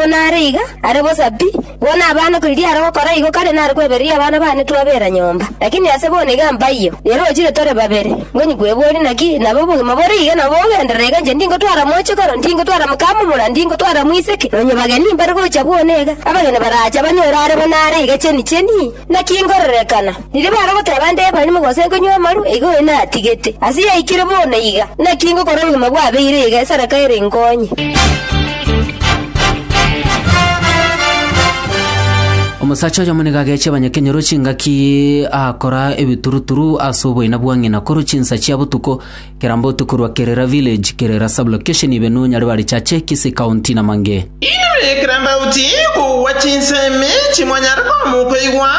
Buna are iga, are bosa pi. Bono abana koriria are gokora igo kare nare kwebereria abana bane twabeera nyomba. Lakini ase bono iga mbaiyo, rero ochire tore babere. Ngonyi kweboria naki nabe obogima bore iga nabo bogenderere iga inche ndingotwara moche koro, ndingotwara mokamomura, ndingotwara moiseke, nonye bageni mbare gocha buna iga. Abageni baraacha banyore are buna are iga cheni cheni. Naki ngororekana? Riria barogotera abande ebarimo gose konywa amaru, igo oyo natigete. Ase yaikire bono iga, naki ngokora obogima bwabeire iga esadaka ere inkonye. Omosacha oyomo nigo agechie abanyakenyoro chingaki aakora ebituruturu ase oboina bwa ng'ina korwa chinsa chia botuko Kera mbotu korwa kerera village, kerera sub-location ibe nonyare barichache kisi county na mange. Inwe ekero mbautie kogwa chinsemi chimonyare komoka igwa,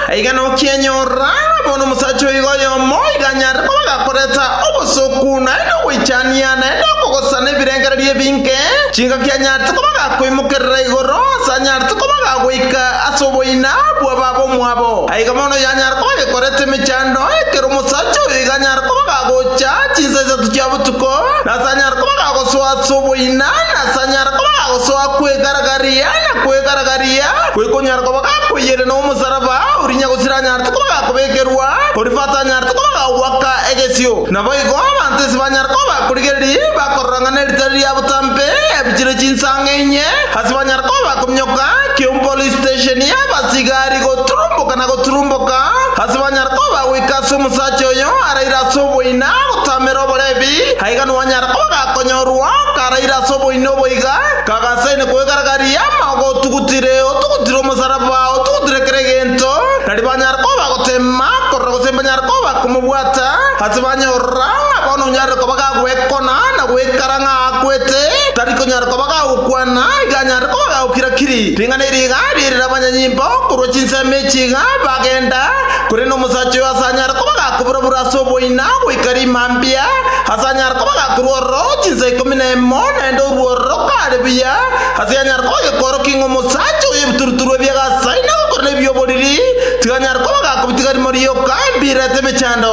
aiga nokienyora, bono omosacha oiga oyomo iga anyare koba gakoreta obosoku naende ogoichania naende okogosana ebirengererio ebinge, chingaki anyarete koba gakoimokerera igoro, ase anyarete koba gagoika ase oboina bw'ababomwabo. Aiga bono yanyara koba gekorete emechando ekero omosacha oyo iga anyare koba gagocha chinsa isato chia botuko, na ase anyare koba gagosoa ase oboina, na ase anyare koba gagosoa kwegaragaria na kwegaragaria, goika onyare koba gakoiyerera omosaraba oria nyagusira anyarete koba gakobekerwa, oria bato anyarete koba gagwaka egesio. Naboigo abanto ase banyare koba bakorigereria bakorora ng'a neritari ria botambe ebuchire chinsa ang'e inye, ase banyare koba bakorigereria. Nyoka ki'omopolistesheni y'abasigari goturumboka na goturumboka, ase banyare koba goika ase omosacha oyo araire ase oboina gotamera oborebi, aiga nowanyare koba gakonyorwa karaire ase oboina obo iga, kagasaine kwegaragaria ama ogotugutire, otugutire omosaraba, otugutire kera egento, nari banyare koba bagoteema korora gose mbanyare koba komobwata, ase banyorora ng'a bono onyarire koba gagwekona na goikara ng'a akwete, tari konyara Koba gagokwana iganyare koba gagokira-kiri, ring'ana eri igaaria erire abanyanyimpa korwa chinsemo echi iga bagenda, korende omosacha oyo asanyare koba gakobura-bura ase oboina goika rima mbia, asanyare koba gakorua ororo chinsa ikomi na imo, naende orue ororo kare buya, ase yanyare koba gekoorokia ng'a omosacha oyo ebituruturu ebio agasaina gokora nebi oboriri, tiganyare koba gakobitigari morioka, embira ete emechando.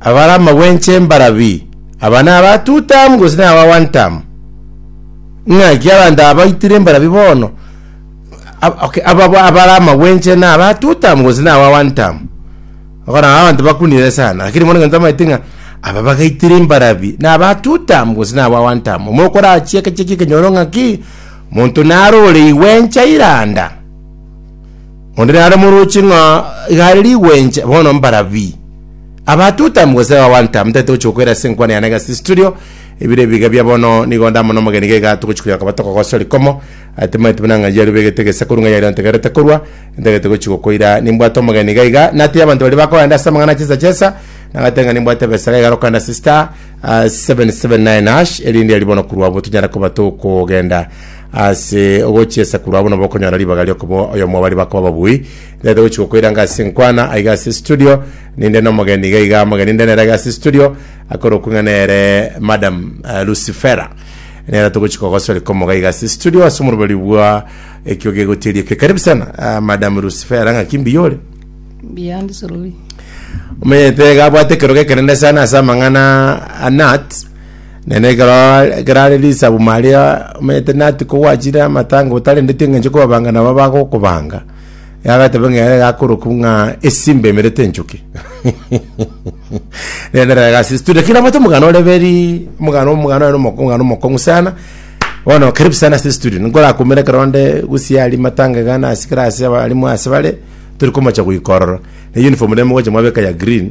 Abare amagwencha embarabi, aba naba two term gose naba one term? Ng'aki abanto aba baitire embarabi bono? Ab- okay, aba aba- abare amagwencha naba two term gose naba one term? Okona abanto bakunire sana, lakini mono ngento amaete ng'a aba bagaitire embarabi naba two term gose naba one term. Omo okorachia ekeche ekenyoro ng'aki monto narore igwencha iranda. Onde nare moroche ng'a iga are rigwencha, bono mbara pi? Aba two time gose aba one time, tari togochia gokoira ase enkwana yane egasi studio, ebire ebiga bia bono nigo ndamo na omogeni iga iga togochia koyoka botoka gose orikomo, atemaneti buna ng'a yaria obegete egesakoru ng'a yaria ontegerete korwa, ntagete gochia gokoira nimbwate omogeni iga iga, natebia abanto baria bakogenda ase amang'ana chesa chesa, nagate ng'a nimbwate ebesa iga iga rokogenda ase star ah, 779 hash, erinde aria bono korwa abwo tonyare koba tokogenda Ase ogochia esakurwa abwo nabo okonyora ribaga riokoba oyomo wabari bakoba babui nete gochi gokoiranga ase enkwana aiga ase studio ninde nomogeni iga iga mogeni nde nere aiga ase studio akorokwa ng'a nere madam uh, lucifera nera togochi kogosori komoga iga ase studio ase omoroberi bwa ekio gegotiria ekio karibu sana uh, madam lucifera ng'a kimbi yore Beyond Sulubi. omenyete gabwate ekerogo ekenene sana ase amang'ana anat Naende ekero ekero are risabu Maria omanyete nati kogwachire amatanga otarendeti eng'encho kobabanga nabo abagokobanga, yagateba ng'a ere gakorokwa ng'a esimba emerete enchoki. Naende ere agasistura kera moto omogano ore beri, omogano omogano oye na omoko- omogano omokong'u sana, bono karibu sana ase estudio, nkorakumere ekero onde gusii aria matanga iga nasi kera ase aba arimo ase bare, tori komocha goika ororo. Na uniform rende mogocha mwabeka ya green.